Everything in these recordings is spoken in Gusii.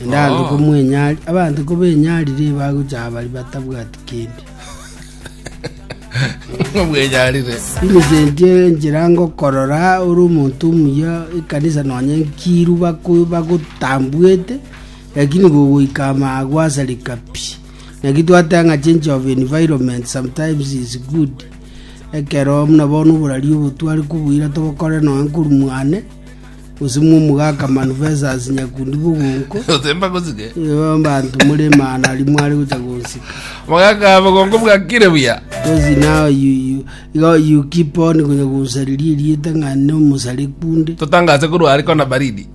Naende abanto komwenyari- abanto kobenyarire bagocha abari batabwati kende. Ngomwenyarire. Inyesetie enchera ngokorora ore omonto omuya ekanisa nonya enkiru bako- bagotambwete, lakini gogoika amaa gwasareka pi. Naki twateba ng'a change of environment sometimes is good. Ekero buna bono oborari obo tware kobuira tobokore nonya nkorwa mwane, Gose mwomogaka Manufesasi nyakundi bogonko, Osemba gosike. nigo abanto more Emana aria mware gocha gonsika. Mogaka bogongo bwakire buya. Gose nao yu- yu- igo you keep on konya gonsariria erieta ng'a nomosare kunde. Totangase korwa are kona baridi.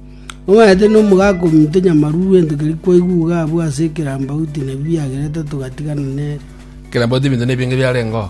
Omanyete nomogaka ominto nyamaruru ento keria kwaiguga abwo ase ekerambauti nabi biagerete togatigana nere. Kerambauti ebinto nebinge biarengeo.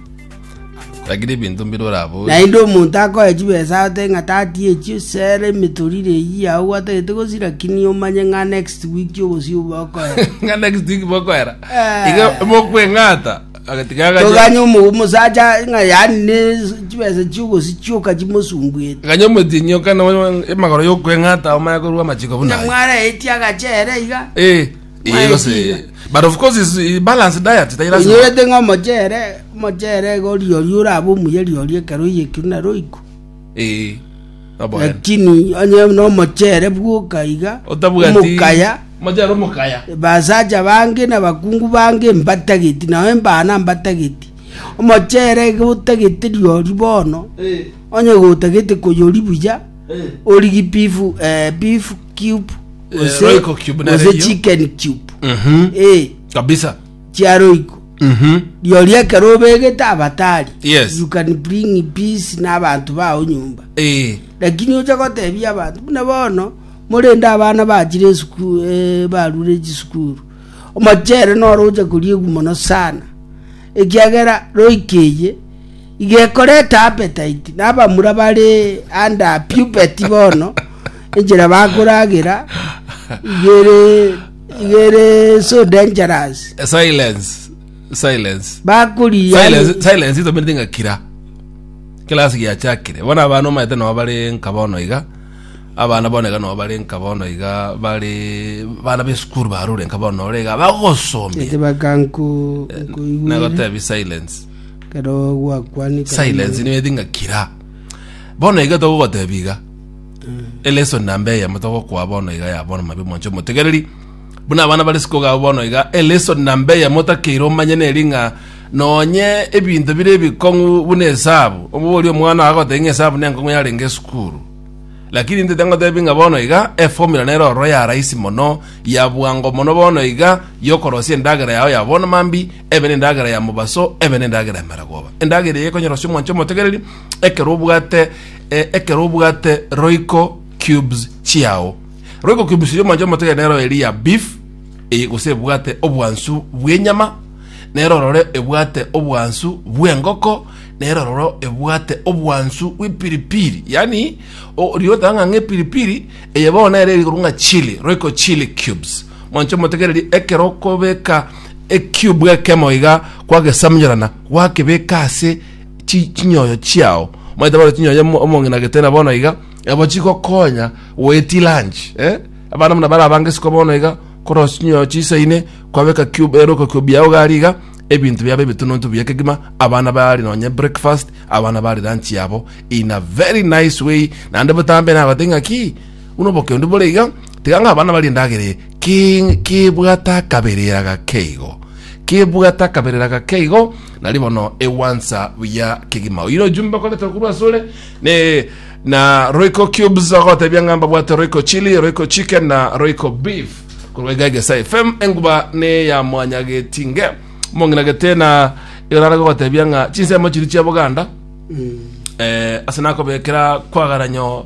Rakire ebinto mbire oraborie. Naende omonto akoe chibesa agote ng'a tati echio sera emitorire eyio yao gwatagete gosi lakini omanye ng'a next week ogosi obo okoera. Ng'a next week bokoera. Eh. Iga mokweng'ata. Agati gagacha. Toganye omo- omosacha ng'a yani ne chibesa chiogosi chioka chimosumbuete. Ganya omotienyi okana emagoro yokweng'ata omanye korwa amachiko buna. Nyamwara etia agachere iga. Eh. Eh, gose- Maetiga. but of course is eh, balance diet tai lazima oigete ng'a omochere omochere iga oriori orabe omuya riori ekero oiyekire na roiko Eh, oboe. lakini onye na omochere bwoka iga Otabwati- omokaya Mochere omokaya basacha bange na bakungu bange mbatageti nao embana mbatageti omochere iga otagete riori bono onye gotagete koyori buya Eh. origi beef eh, beef cube Eh, gose Royco cube na gose radio. chicken cube Mhm. eh kabisa chia roiko Mhm. riori ekero obegete abatari Yes. you can bring peace na abantu bao nyumba Eh, lakini ocha gotebia abantu buna bono morende abana bachire esukuru eh, barure chisukuru omochere noro ocha koria egu mono sana ekiagera roikeye Igekoreta apetaiti, na abamura bare ande a pubeti bono, enchera bakoragera igere igere so dangerous. Eh, Silence. Silence. Bakuri yani Silence. Silence itomerete ng'a kira. Class giachakire. Bona abana omaete nabo bare nka bono iga. Abana bono iga nabo bare nka bono iga. Bare bana be school barure nka bono ore iga. Bagosomia. ete bakanku kuigwere. Nagotebi silence. Ekero gwakwanire silence niyo edi ng'a kira bono iga togogotebi iga elesson namba eyemo togokoa bono iga ya bono mabi omonche omotegereri buna abana bare sikoga abo bono iga elesson namba eyemo otakeire omanye neri ng'a nonye ebinto bire ebikong'u buna esabu obogoria omwana ogo agotebi ng'a esabu nenkong'u yarenge esukuru lakini intete ngotebi ng'a bono iga eformula nere ororo ya rahisi mono ya bwango mono bono iga yokorosia endagera yao ya bono mambia ebe nendagera ya mobaso, ebe nendagera ya maragoba. Endagera eye ekonyorosia omwancho omotegereri ekero obwate eh, ekero obwate Royco cubes chiao. Royco cubes ya omwancho omotegereri nero eri ya beef eye gose ebwate obwansu bw'enyama nero ororo ebwate obwansu bw'engoko nero ororo ebwate obwansu bw'epiripiri yaani o- riotanga ng'a epiripiri eye bono nere eri korwa ng'a chili Royco chili cubes Mwanche motegererie, ekero okobeka ekiubu ekemo iga kwagesamunyorana, gwakebeka ase chi- chinyoyo chiao. Maete bono chinyoyo omo- omong'ina getena bono iga, abo chigokonya goeti lunch, eh? Abana buna bare abange isiko bono iga, korosia chinyoyo chiisaine, kwabeka kiubu ere okokiubu yao iga aria iga, ebinto biabo ebitununtu biya kegima, abana bare nonye breakfast, abana bare lunch yabo in a very nice way, naende botambe nagotebi ng'a ki? Buna obokendu bore iga, tiga ng'a abana barie endagera eye, ki- kibwate akaberera gake igo, kibwate akaberera gake igo, nari bono egwansa buya kegima. Oyire ojumbe okoretwe korwa asore, ne na Royco Cubes agotebia ng'a mbabwate Royco Chili, Royco Chicken na Royco Beef. Korwa iga Egesae FM enguba ne ya mwanya getinge. Omong'ina gete na yorare gogotebia ng'a chinsemo chiria chia Boganda eh, ase nakobekera kwagara nyo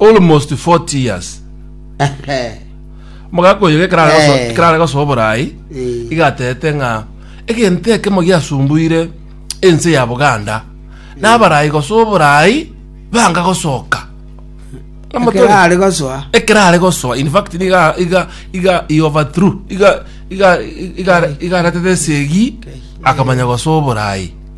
almost 40 years omogaka oyo ekero are goso- Eh. ekero are gosoa oborai Eh. igatete ng'a egento ekemo giasumbuire ense ya boganda nabarai gosoa oborai banga gosoka Omotore- ekero are gosoa ekero are gosoa in fact niga iga iga i overthrew iga iga iga iga aretete esegi akamanya gosoa oborai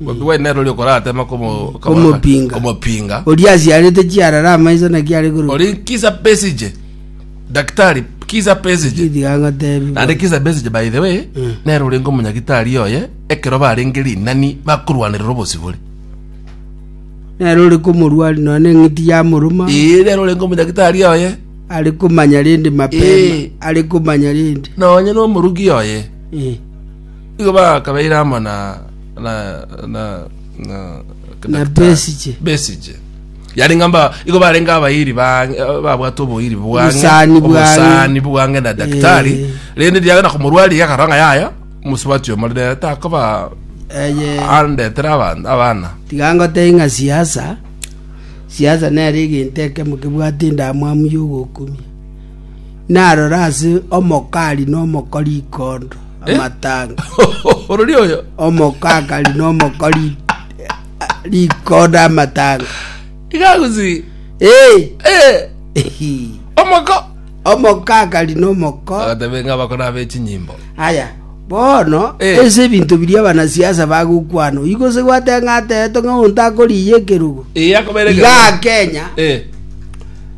Bobi Wine nere oria okoratema komo- Komopinga. komopinga Oria asiarete chiarara amaiso naki are koruka. ori Kisa Besigye daktari Kisa Besigye Gitiga ngotebi. naende Kisa Besigye by the way Mm. nere orenge omonyagitari oye ekero barenge rinani bakorwanerera obosibore Nere ore komorwari none eng'iti yamoruma. ee nere orenge omonyagitari oye Are komanya rende mapema. Eh. Are komanya rende. nonye nomorugi oye Eh. igo bakabeire amo na na na na Na Besigye. Besigye yari ngamba igo barenge abairi bange babwate oboiri bwange Obosani bwange. obosani bwange na daktari Eh. rende ndiagenda komorwari yakaranga yaya mosubati omo rende takoba Eye andetere abana abana tiga ngotebie ng'a siasa siasa nere egento ekemo kebwate endamwamu ya ogokumia Narore ase omokari na omokori ikondo amatanga, Orori oyo. omokakari na omokori rikondo amatanga. Igagusi. Ee, Eh. ehi. Omoko. omokakari na omoko Agatebe ng'a bakora abe chinyimbo. aya bono Eh. ase ebinto biria abanasiasa bagokwana igo se gwateng'ateete ng'a onto akoriya ekerogo Eye akobere. iga kenya Eh.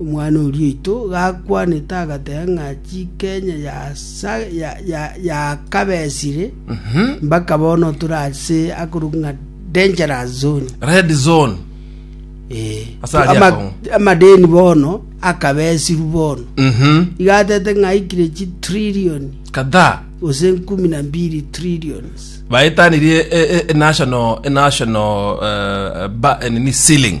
Omwana oria oito gakwanete agateba ng'a chikenya yasa- ya- ya- yakabesire Mhm. mpaka bono tore ase akorokwa ng'a dangerous zone red zone Eh, Ase aria ama- akong'u. amadeni bono akabesiru bono Mhm. igatete ng'a aikire chi trillion kadhaa gose nkumi na mbiri trillions baetanirie e- e- e- national e- national eh, ba- eh, nini ceiling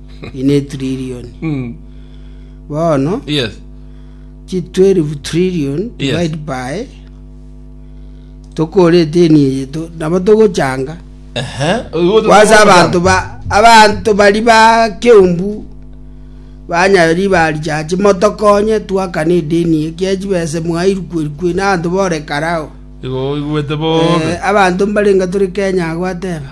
ine etrilioni. Mm. Bono Yes. chi 12 trillion Yes. divide by tokore eteni eye to- nabo togochanga Ehe. Ogo- kwanza ogo- abanto ba abanto bari ba keumbu banya ribari chache motokonye twakane edeni ekia chibese mwairukwerukwe na abanto bore karao Igo oigwete bobe. Eh, abanto mbarenga tore kenya agwateba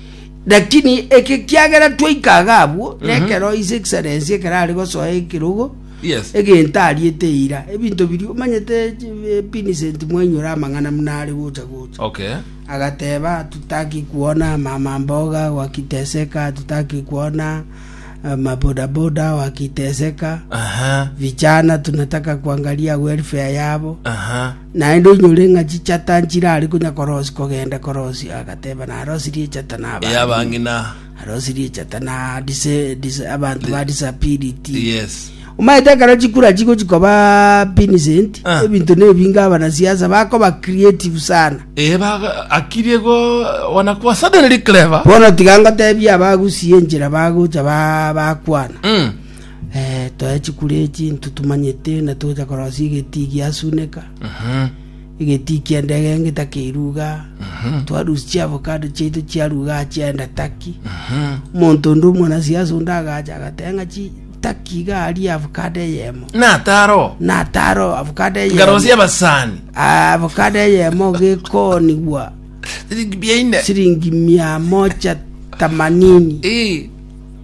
Lakini eke kiagera twaika iga abwo, mm -hmm. nekero His Excellency ekero are gosoa ekirogo, yes. egento ariete eira, ebinto biri omanyete Vincent eh, mwainyora amang'ana muna are gocha gocha. Okay. Agateba tutaki kuona mama mboga wakiteseka, tutaki kuona eh, mabodaboda wakiteseka. Aha. Vijana tunataka kuangalia welfare yabo. Aha. Naende onyore ng'a chichata nchirare konya korosi kogenda korosi, agateba, Narosirie echata na abang'ina. Ey'abang'ina. Narosirie echata na dise- dise- abanto ba disability. Yes. Omanyete ekero chikura chigochi koba Vincent, Ah. ebinto nebinge abanasiasa bakoba creative sana. Eh, baga- akirie go wanakuwa suddenly clever. Bono tiga ngotebie abagusie enchera bagocha ba- bakwana. Mm. Eh, toe chikure echi, intwe tomanyete na togocha korosia egetii giasuneka, egetii ki'endege ngetakeirwe iga, twarusia chiavocado chiaito chiarwa iga chiaenda Turkey. Omonto onde omwanasiasa onde agacha agateba ng'a chi Turkey iga aria avocado eyemo, nataro nataro avocado eyemo ngarosia abasani Ah, avocado eyemo gekoonigwa siringi mia ine siringi mia moja themanini Eh,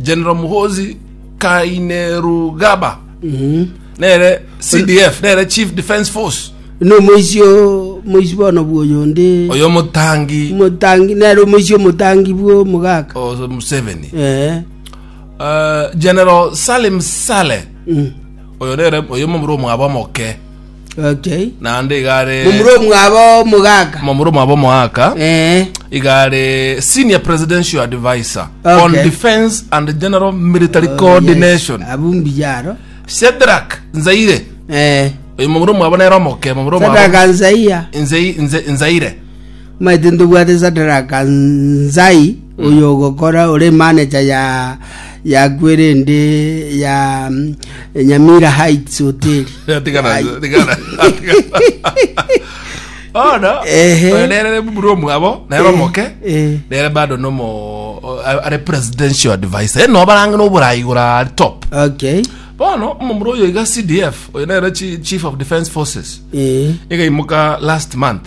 General Muhozi Kainerugaba nere CDF nere Chief Defence Force no moisi o moisi bono bwoyo onde oyo motangi motangi nere omoisi omotangi bwo mogaka o Museveni eh Eh, General Salim Saleh mm. oyo nere oyo momura omwabo moke Okay. naende iga are Momura omwabo omogaka. momura omwabo omoaka Eh. iga are senior presidential advisor Okay. on defence and general military Oh, coordination yes. Abumbi jaro. shedrak nzaire Eh. oyo momura omwabo nere omokemo momura omwabo Sadaka nzaiya. Nzei- Nze- nzaire Omanyete ntobwate Sadaraka Nzai, oyo ogokora ore manager ya ya kwerende ya mm, Nyamira Heights Hotel. Atikana, Ai. atikana, atikana. Bono, Ehe. oyo nere buru omwabo, nere Eh, omoke, eh. nere bado nomo o- a- are presidential advisor. Eh, no barange noborayi gora ari top. Okay. Bono, omomura oyo iga CDF, oyo nere chi- chief of defense forces. Eh. Igaimoka last month.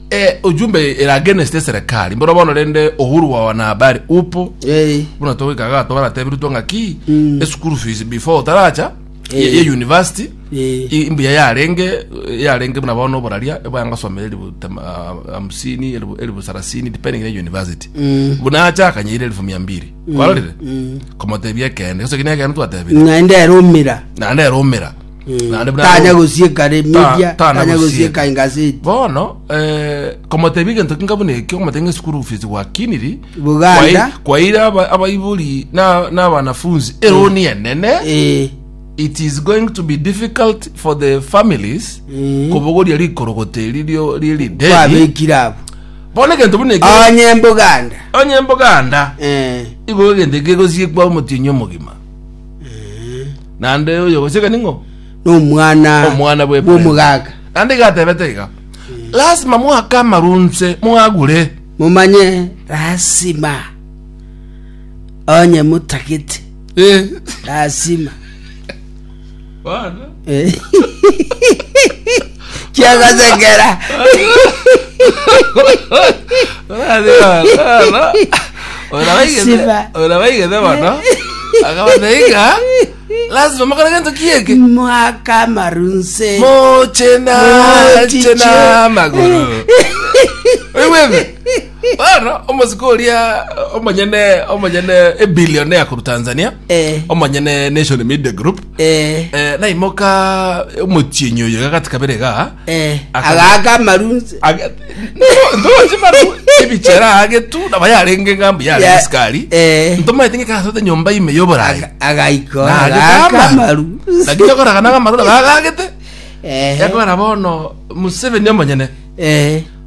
E ujumbe ere against eserekari mboro bono rende uhuru wa wanahabari upo Eh, buna togoikaga twaratebiritwe ng'a ki Mm. e school fees before otaracha Eh. ye ye university eh, i- mbuya yarenge yarenge buna bono oboraria ebwanga somera elibu tama- ah, hamsini elibu elibu sarasini depending na university mm, buna acha akanyeire elifu mia mbiri kwarorire mm. komotebia ekende gose kine ekende twatebire naende erumira naende erumira Naende buna tanya Rumi. gosieka re media Ta- tana tanya gosieka. gosieka engaseti bono eh, komotebia egento kinka buna ekio komotebia ng'a esukuru fees gwakiniri Buganda. Kwai- kwaire aba- abaibori na na abanafunzi eroni enene Eh, it is going to be difficult for the families Mm. kobogoria rikorogoto eri rio ririderi kwabekire abo bono egento buna ekio onye mbuganda onye mboganda Eh, igoro egento kegosiekwa omotienyi omogima Naende oyogochika ning'o? Nomwana Omwana bwe Ibrahimu. bw'omogaka. Naende iga atebete iga, lasima mwake amarunse mwagure. Momanye lasima. Onye motagete Eh, lasima. bono. kiagasekera Siba. orabaigete bono akabateika lazima mokore gento kieke mwaka amarunse moche nache Mochiche. namagoro oigwete Bono omosike oria omonyene omonyene ebillionaire korwa Tanzania Eh. omonyene Nation Media Group Eh, eh, naimoka omochienyi oyo gagati kabere iga eh, Aka- agaaka amarunse Aga- Ndo- ndoche maru ebichera agetu naba yarenge ngambu yarenge Ya- sikari eh. ntomaete ngekasote nyomba ime yoborai Aga- agaiko agaaka nagitama amaru lakini okoraga nanga maru nagagagete Eh, yakora bono museveni omonyene eh.